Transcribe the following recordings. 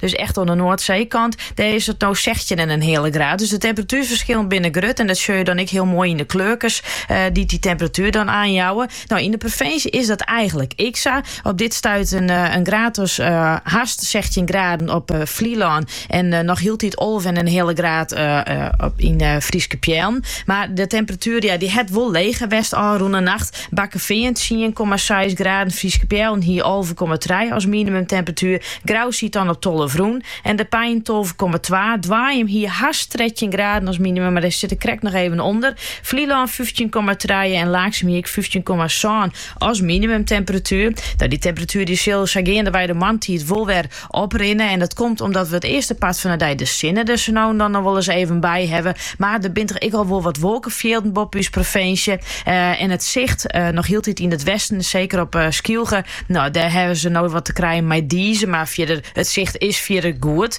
Dus echt oan de Noardseekant, dêr is it no sechstjin en in heale graad. Dus de temperatuerferskillen binne grut en dat sjoch je dan ek hiel moai yn de kleurkes dy't dy temperatuer dan oanjouwe. No, yn de provinsje is dat eigenlik ek sa. Op dit stuit in graad as hast sechstjin graden op Flylân en noch hieltyd alve en in heale graad yn Fryske Peallen. Mar de temperatuer ja, dy hat wol leger west ôfrûne nacht. Bakkefean tsien komma seis graden, Fryske Peallen hie alve komma trije as minimumtemperatuer, Grou siet dan op tolve rûn en De Pein tolve komma twa. Doaium hie hast trettjin graden as minimum, mar dêr sit er krekt noch even ûnder, Flylân fyftjin komma trije en Laaksum hie ek fyftjin komma sân as minimumtemperatuer. Dat dy temperatuer dy sil sa geandewei de moarntiid wol wer Oprinne en dat komt omdat we it earste part fan 'e dei de sinne der sa no en dan noch wol ris even by hawwe. Mar der binne toch ek al wol wat wolkefjilden boppe ús provinsje en it sicht noch hieltyd yn it westen, seker op Skylge. No, dêr hawwe se noch wat te krijen mei dize, mar fierder, it sicht is fierder goed.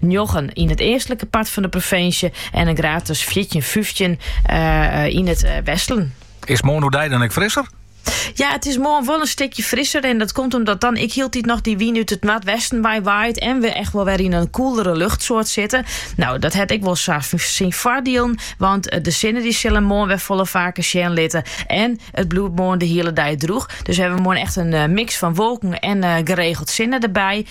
njoggen yn it eastlike part fan de provinsje en in graad as fjirtjin, fyftjin yn it westen. Is moarn oerdei dan ek frisser? Ja, it is moarn wol in stikje frisser. En dat komt omdat dan ek hieltyd noch dy wyn út it noardwesten wei waait. En we echt wol wer yn in koelere luchtsoart sitte. No, dat hat ek wol syn foardielen. Want eh, de sinne dy sil him moarn wer folle faker sjen litte. En it bliuwt moarn de hiele dei droech. Dus hawwe we moarn echt in eh, miks fan wolken en eh, geregeld sinne derby.